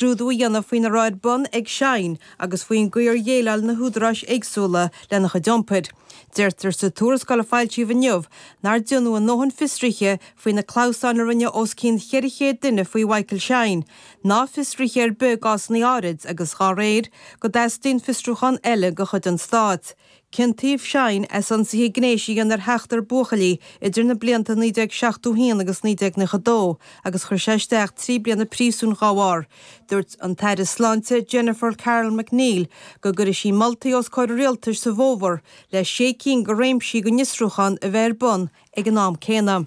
scrúdú a dhéanamh faoin a raibh ar bun ag Shine agus faoin gcaoi ar dhéileáil na húdaráis éagsúla lena chuid iompair. Deirtear sa tuarascáil a foilsíodh inniu nár déanadh a ndóthain fiosruithe faoi na clamhsáin a rinne os cionn 400 duine faoi Mhichael Shine, ná fiosruithe ar bith i gcásanna áirid agus, dá réir, go dteastaíonn fiosrúchán eile de chuid an stáit. Ciontaíodh Shine as ionsaithe gnéis a dhéanamh ar sheachtar buachaillí idir na blianta 1971 agus 1992 agus chuir sé isteach trí bliana príosúin dhá bharr. Dúirt an tAire Sláinte Jennifer Carroll MacNeill go gcuirfidh sí moltaí os comhair an Rialtais sa bhfómhar le sé cinn de réimsí den fhiosrúchán a bheith ar bun ag an am céanna.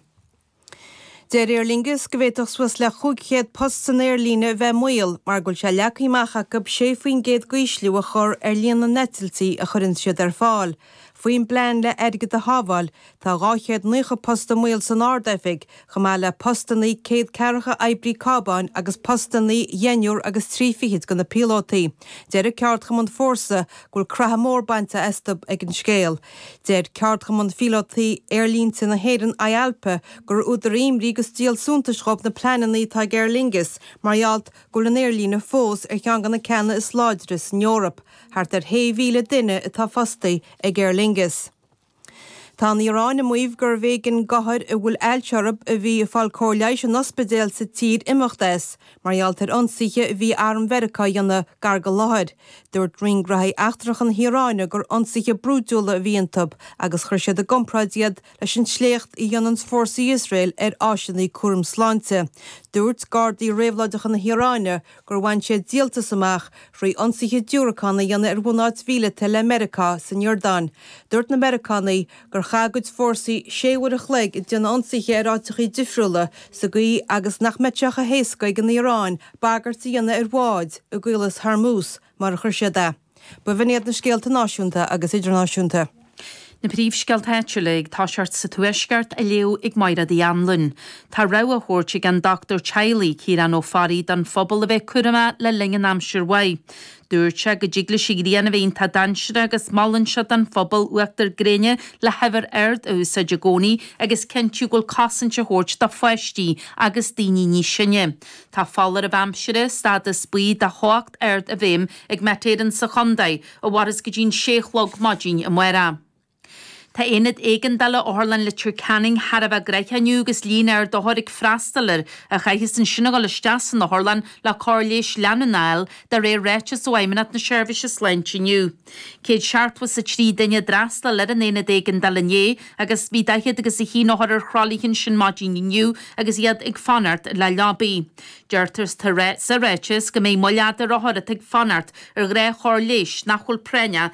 Deir Aer Lingus go bhféadfadh suas le 500 post san aerlíne a bheith i mbaol mar go bhfuil sé leagtha amach acu 6 faoin gcéad d'ísliú a chur ar líon na n-eitiltí a chuireanns siad ar fáil. Faoin bplean le airgead a shábháil, tá dhá chéad naocha post i mbaol san Ard-Oifig, chomh maith le postannaí céad ceathracha oibrí cábáin agus postannaí dheichniúr agus trí fichid de na píolótaí. Deir an ceardchumann Fórsa go bhfuil crathadh mór bainte astu ag an scéal. Deir Ceardchumann Phíolótaí Aerlínte na hÉireann, Ialpa, gur údar imní agus díol suntais dhóibh na pleananna atá ag Aer Lingus mar gheall go bhfuil an aerlíne fós ar cheann de na ceanna is láidre san Eoraip, thart ar shé mhíle duine atá fostaí ag Aer Lingus. Tá an Iaráin ag maíomh gurbh éigean d'othair a bhfuil ailse orthu a bhí ag fáil cóir leighis in ospidéil sa tír imeacht as, Mar gheall ar ionsaithe a bhí arm Mheiriceá a dhéanamh gar dá láthair. Dúirt Roinn Gnothaí Eachtracha na hIaráine gur ionsaithe brúidiúla a bhí iontu agus chuir siad i gcompráid iad leis an sléacht a dhéananns fórsaí Iosrael ar áiseannaí cúraim sláinte. Dúirt Gardaí Réabhlóideacha na hIaráine gur bhain siad díoltas amach thrí ionsaithe diúracán a dhéanamh ar bhunáit mhíleata le Meiriceá san Iordáin. Dúirt na Meiriceánaigh gur chaith a gcuid fórsaí sé uair an chloig ag déanamh ionsaithe ar áiteachaí difriúla sa gcaoi agus nach mbeadh sé chomh héasca ag an Iaráin bagairt a dhéanamh ar bháid i gCaolas Hormuz mar a chuir siad é. B'in iad na scéalta náisiúnta agus idirnáisiúnta. Na príomhscéalta áitiúla ag toiseacht sa Tuaisceart, á léamh ag Máiréad Uí Anluain. Tá rabhadh á thabhairt ag an dochtúir teaghlaigh, Ciarán Ó Fearraigh, don phobal a bheith cúramach le linn an aimsir mhaith. Dúirt sé go dtig leis an ghrian a bheith iontach dainséarach agus molann sé don phobal uachtar gréine le huimhir ard a úsáid i gcónaí agus cinntiú go bhfuil cosaint á thabhairt do pháistí agus daoine níos sine. Tá foláireamh aimsire, stádas buí de theocht ard i bhfeidhm ag Met Éireann sa chontae a mhaireas go dtí an sé a chlog maidin amárach. Tá Aonad Éigeandála Otharlann Leitir Ceanainn thar a bheith gnoitheach inniu agus líon ard othar ag freastal air a chaitheas ansin a dhul isteach san otharlann le cóir leighis leanúnach a fháil, de réir ráiteas ó Fheidhmeannacht na Seirbhíse Sláinte inniu. 170 is 3 duine a d'fhreastal ar an Aonad Éigeandála inné agus bhí 40 agus 1 othar ar thralaithe ansin maidin inniu agus iad ag fanacht le leabaidh. Deirtear sa ráiteas go mbeidh moill fhada ar othair atá ag fanacht ar chóir leighis nach bhfuil práinneach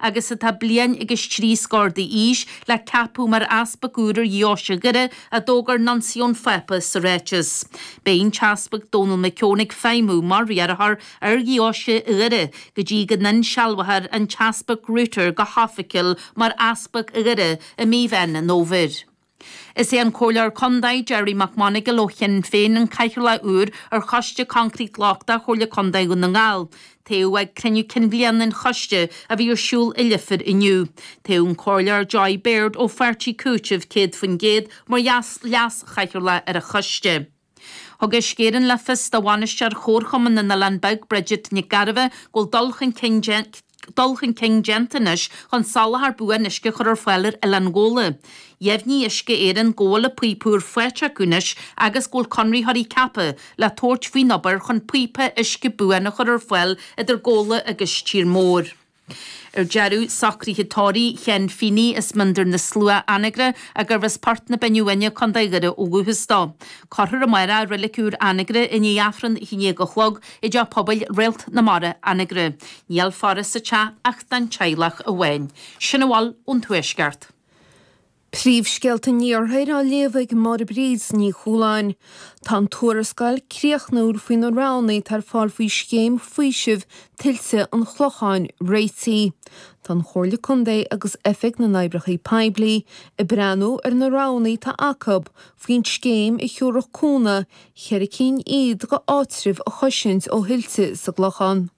agus atá bliain agus trí scór d'aois, le ceapadh mar Easpag úr ar Dheoise Dhoire a d'fhógair Nuinteas an Phápa sa ráiteas. Beidh an tEaspag Dónall Mac Eoin ag feidhmiú mar riarthóir ar Dheoise Dhoire go dtí go n-insealbhófar an tEaspag Rueter go hoifigiúil mar Easpag Dhoire i mí Mheán an Fhómhair. Is é an Comhairleoir Contae, Gerry Mac Monagail ó Shinn Féin, an cathaoirleach úr ar Choiste Coincréit Lochtach Chomhairle Contae Dhún na nGall. Toghadh ag cruinniú cinn bhliana an choiste, a bhí ar siúl i Leifear inniu. Toghadh an Comhairleoir Joy Beard ó Pháirtí Cúitimh 100% mar leas-chathaoirleach ar an choiste. Thug Uisce Éireann le fios do bhainisteoir Chomharchumann na nOileán Beag, Bridget Nic Gairbheith, go bhfuil dul chun cinn déanta anois chun soláthar buan uisce a chur ar fáil ar Oileán Ghabhla. Dheimhnigh Uisce Éireann go bhfuil píopaí úra faighte acu anois agus go bhfuil conraitheoirí ceaptha le tabhairt faoin obair chun píopa uisce buan a chur ar fáil idir Gabhla agus Tír Mór. Ar deireadh, socruithe tórraimh Sheáin Feeney as Mín Doire na Slua Anagaire, a gurbh as Port na Binne Uaine, Co. Dhoire ó dhúchas dó. Cuirfear amárach i Reilig Úr Anagaire, i ndiaidh Aifreann a haon déag a chlog i dTeach Pobail Réalt na Mara, Anagaire. Níl faire sa teach ach don teaghlach amháin. Sin a bhfuil ón Tuaisceart. Príomhscéalta an Iarthair á léamh ag Máire Bríd Ní Chualáin. Tá an tuarascáil críochnúil faoi na roghanna atá ar fáil faoi Scéim Faoisimh Tuilte an Chlocháin réitithe. Tá an Chomhairle Contae agus Oifig na nOibreacha Poiblí ag breathnú ar na roghanna atá acu faoin scéim a thabharfadh cúnamh, ceithre cinn iad, go áitreabh a chosaint ó thuilte sa gClochán.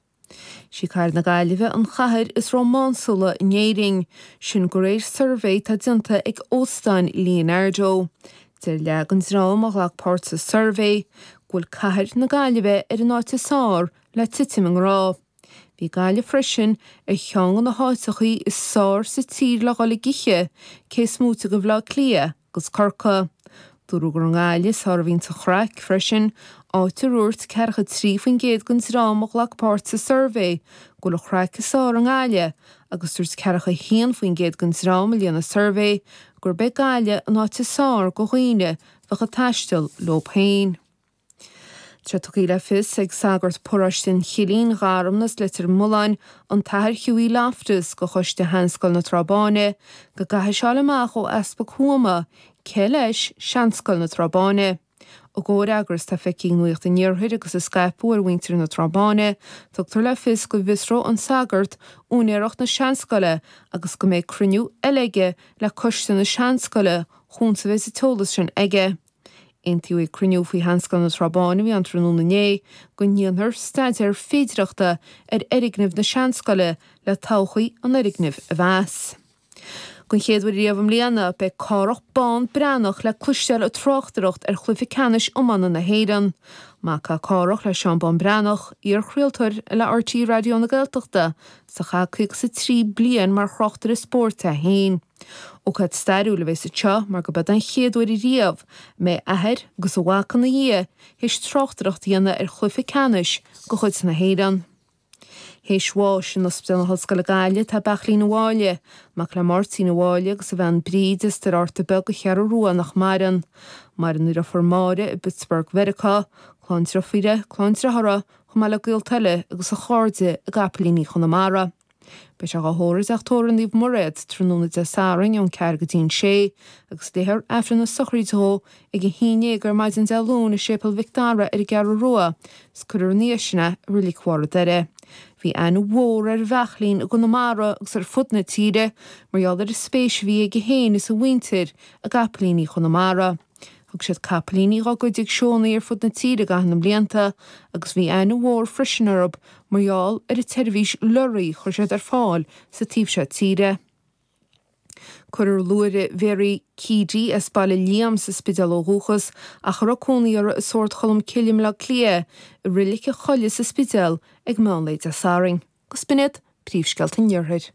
Sí cathair na Gaillimhe an chathair is rómánsúla in Éirinn, sin de réir suirbhé atá déanta ag Óstán Leonardo. Deir leath den dream a ghlac páirt sa suirbhé go bhfuil cathair na Gaillimhe ar an áit is fearr le titim i ngrá. Bhí Gaillimh freisin ar cheann de na háiteachaí is fearr sa tír le dhul ag ithe, cés moite de Bhleá Cliath, gus Corcaigh. Dúradh gur i nGaillimh, is fearr a bhíonns an chraic freisin, áit ar dhúirt ceathracha 3% den dream a ghlac páirt sa suirbhé go bhfuil an chraic is fearr i nGaillimh agus dúirt ceathracha 1% den dream a líon an suirbhé gurb é Gaillimh an áit is fearr do dhaoine a bheadh ag taisteal leo féin. Tá tugtha le fios ag sagart paráiste an Chillín, Gharmna is Leitir Mealláin, an tAthair Hughie Loftus, do Choiste Sheanscoil na Trá Báine go gcaithfidh sé fáil amach ó Easpag Thuama, cé leis, Seanscoil na Trá Báine. I gcomhfhreagras atá feicthe ag Nuacht an Iarthair agus a scaipeadh ar mhuintir na Trá Báine, tugtar le fios go bhfiosróidh an sagart úinéireacht na Seanscoile agus go mbeidh cruinniú eile aige le Coiste na Seanscoile chúns a bheas an t-eolas sin aige. Aontaíodh ag cruinniú faoi Sheanscoil na Trá Báine a bhí ann tráthnóna inné go ndéanfar staidéar féidireachta ar fhoirgneamh na seanscoile le todhchaí an fhoirgnimh a mheas. Den chéad uair riamh i mbliana beidh Cárthach Bán Breathnach le cloisteáil ag tráchtaireacht ar Chluiche Ceannais Iomána na hÉireann. Mac é Cárthach le Seán Bán Breathnach, iar-chraoltóir le RTÉ Raidió na Gaeltachta is a chaith 53 bliain mar thráchtaire spóirt é féin. Ócáid stairiúil a bheas anseo mar gurb é an chéad uair riamh a mbeidh athair agus a mhac ina dhiaidh théis tráchtaireacht a dhéanamh ar chluife ceannais de chuid na hÉireann. Théis bháis in Ospidéal na hOllscoile Gaillimh tá Beachlaín an Bhaile, mac le Máirtín an Bhaile agus a bhean Bríd as Doire Fhatharta Beag, an Cheathrú Rua nach maireann. Maireann a dheirfiúr Máire i bPittsburgh, Mheiriceá, clann deirfíre, clann dearthára, chomh maith le gaolta eile agus a chairde i gCapaillíní Chonamara. Beidh sé dhá thórramh i dTeach Tórraimh Naomh Mairéad tráthnóna Dé Sathairn ón ceathair go dtí'n sé, agus léifear Aifreann na sochraíde dhó ag a haon déag ar maidin Dé Luain i Séipéal Mhic Dara ar an gCeathrú Rua, 's cuirfear ina dhiaidh sin é i Reilig Bharr an Doire. Bhí aithne mhór ar Bheachlaín i gConamara agus ar fud na tíre mar gheall ar an spéis a bhí aige féin is a mhuintir i gcapaillíní Chonamara. Thug siad capaillíní dhá gcuid ag seónna ar fud na tíre i gcaitheamh na mblianta agus bhí aithne mhór freisin orthu mar gheall ar an tseirbhís leoraí a chuir siad ar fáil sa taobh seo tíre. Cuirfear luaithre Mhary Keady as Baile Liam sa Spidéal ó dhúchas ach a raibh cónaí uirthi i Sórd Cholm Cille i mBleá Cliath i Reilig an Choilligh sa Spidéal ag meán lae Dé Sathairn. agus b'in iad, Príomhscéalta an Iarthair.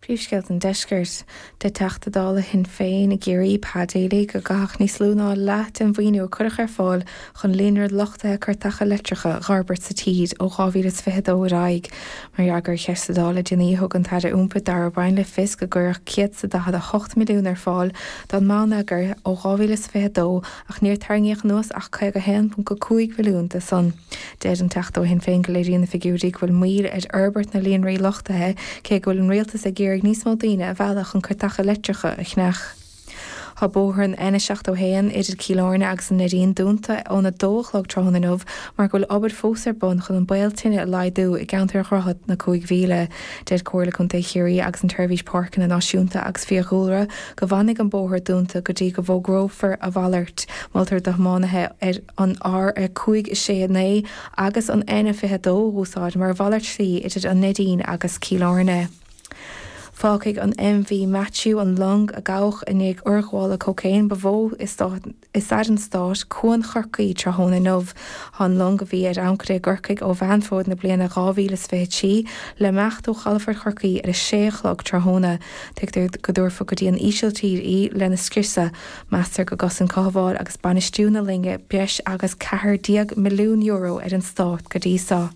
Príomhscéalta an Deiscirt, deir Teachta Dála Shinn Féin i gCiarraí, Pa Daly, gur caitheadh níos lú ná leath den mhaoiniú a cuireadh ar fáil chun líonra luchtaithe cairteacha leictreacha a fhorbairt sa tír ó 2022 ar aghaidh mar fhreagra ar cheist sa Dáil le déanaí thug an tAire Iompair Darragh O'Brien le fios gur cuireadh 148 milliún ar fáil don mbonneagar ó 2022 ach níor tarraingíodh anuas ach 51.5 milliún de san Deir an Teachta ó Shinn Féin go léiríonn na figiúirí go bhfuil moill ar fhorbairt na líonraí luchtaithe cé go bhfuil an Rialtas ag iarraidh níos mó daoine a mhealladh chun cairteacha leictreacha a cheannach. Tá bóthar an N71 idir Cill Airne agus an Neidín dúnta ón 2 a chlog tráthnóna inniu mar go bhfuil obair fós ar bun chun an baol tine a laghdú i gceantar Dhroichead na Cúig Mhíle. Deir Comhairle Contae Chiarraí agus an tSeirbhís Páirceanna Náisiúnta agus Fiadhúlra go bhfanfaidh an bóthar dúnta go dtí go bhfógrófar a mhalairt. Moltar do thiománaithe ar. an R569 agus an N22 a úsáid mar mhalairt slí idir an Neidín agus Cill Airne. Fágfaidh an MV Matthew, an long a gabhadh i ndiaidh urghabhála cócaoin ba mhó i stair an stáit, cuan Chorcaí tráthnóna inniu. Tá an long, a bhí ar ancaire i gCorcaigh ó Mheán Fómhair na bliana 2023, le himeacht ó chalafort Chorcaí ar a sé a chlog tráthnóna. Tuigtear go dtabharfar go dtí an Ísiltír í lena scriosadh. Meastar gur chosain cothabháil agus bainistiú na loinge breis agus ceathair déag milliún euro ar an Stát go dtí seo.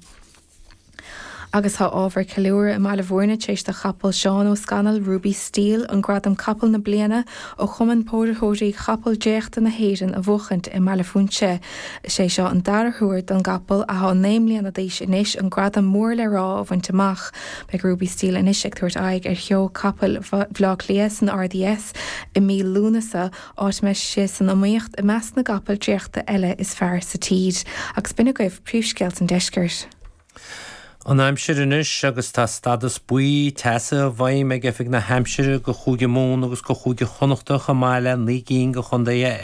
Agus tá ábhar ceiliúrtha i mBaile Mhúirne tar éis do chapall Sheáin Uí Scanaill, Ruby Steel, an gradam Capall na Bliana ó Chumann Póraitheoirí Capall Tarraingthe na hÉireann a bhuachaint i mBaile Phúinse. Is é seo an dara huair don gcapall, athá naoi mbliana d'aois anois, an gradam mór le rá a bhaint amach. Beidh Ruby Steel anois ag tabhairt aghaidh ar sheó capaill Bhaile Átha Cliath san RDS. i mí Lúnasa, áit a mbeidh sé san iomaíocht i measc na gcapall dréachta eile is fearr sa tír. Agus b'in agaibh príomhscéalta an deiscirt. An aimsir anois agus tá stádas buí teasa i bhfeidhm ag Oifig na hAimsire do Chúige Mumhan agus do Chúige Chonnacht chomh maith le naoi gcinn de chontae